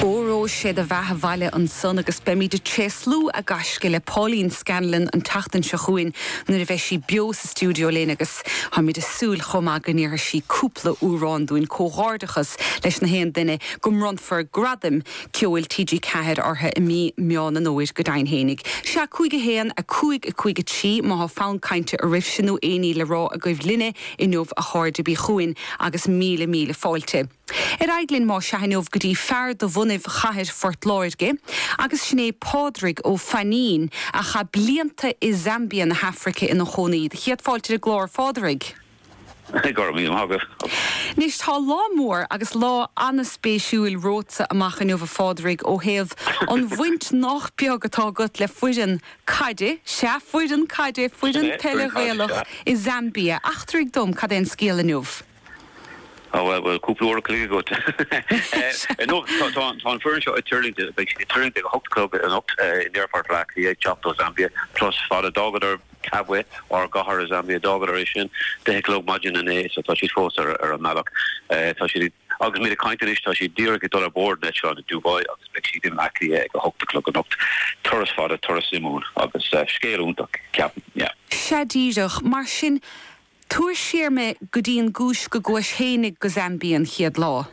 Óró sé do bheatha 'bhaile ansan agus beimíd a' tréaslú a gaisce le Pauline Scanlon an tseachtain seo chugainn nuair a bheidh sí beo sa stiúideo linn agus táimid a' súil chomh maith go ndéarfaidh sí cúpla amhrán dúinn. Comhghairdeachas leis na haon duine go mbronnfar Gradaim Ceoil TG4 orthu i mí Meán an Fhómhair go deimhin fhéinig. Sea, cúig a haon, a cúig, a cúig a trí, má thá fonn cainte oraibhse nó aon ní le rá agaibh linne inniu a chairde bí chugainn agus míle míle fáilte. Ar aghaidh linn más ea inniu go dtí fear de bhunadh chathair Phort Láirge agus sin é Pádraig Ó Fainnín a chaith blianta i Zambia na hAfraice ina chónaí. Do chéad fáilte ar an gclár, a Phádraig. Go raibh míle maith agat. Anois, tá lá mór agus lá ana-spéisiúil romhatsa amach inniu, a Phádraig, ó thaobh an bhaint nách beag atá agat le foireann caide, sea, foireann caide, foireann peile Ghaelach, i Zambia. Eachtraigh dom cad é an scéal inniu. Á bhuel, bhuel, cúpla uair an chloig agat. Ar ndóigh, tá an foireann seo ag tuirlingt, beidh siad ag tuirlingt ag a hocht a chlog anocht in aerfort Bhleá Cliath ag teacht ó Zambia. Turas fada. D'fhágadar Kabwe, ár gcathair i Zambia, d'fhágadar é sin deich a chlog maidin inné so tá siad fós ar an mbealach. Tá siad ag, agus muid ag caint anois, tá siad díreach ag dul ar bord an eitleáin i Dubai agus beidh siad i mBleá Cliath ag a hocht a chlog anocht. Turas fada, turas suimiúil agus scéal iontach, ceapaim, yeah. Sea, díreach. Mar sin, Tabhair siar mé go dtí an gcúis go gcuais fhéinig go Zambia an chéad lá.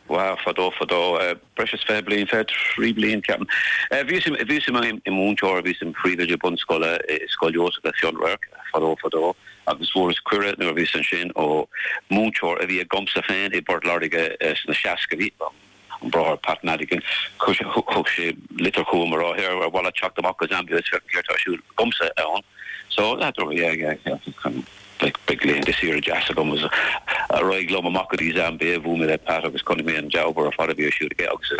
Wow, fadó fadó, breis is fiche bliain, fiche trí bliain ceapaim, bhíos bhíos im mhúinteoir, bhíos im phríomhoide bunscoile i Scoil Iósaif le Fionnradharc fadó fadó agus fuaireas cuireadh nuair a bhíos ansin ó mhúinteoir a bhí agamsa féin i bPort Láirge sna seascaidí, An Bráthair Pat Madigan, chuir sé litir chugam a rá ar mhaith leat teacht amach go Zambia is féach céard tá ar siúl agamsa ann. So, le do thoradh ar an gceantar cruinn, beidh laethanta saoire deas agam. So ar aghaidh liom amach go dtí Zambia, bhuail mé le Pat agus chonaic mé an dea-obair ar fad a bhí ar siúl aige agus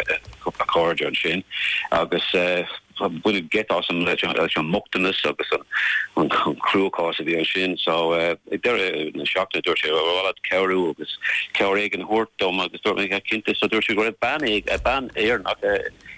a chairde ansin agus. Baineadh geit asam leis an mbochtanas agus an cruachás a bhí ansin. So, ag deireadh na seachtaine, dúirt sé, Ar mhaith leat cabhrú agus cabhair éigin a thabhairt dom? Agus dúirt mé, Cinnte. So dúirt sé go raibh bean Éireannach i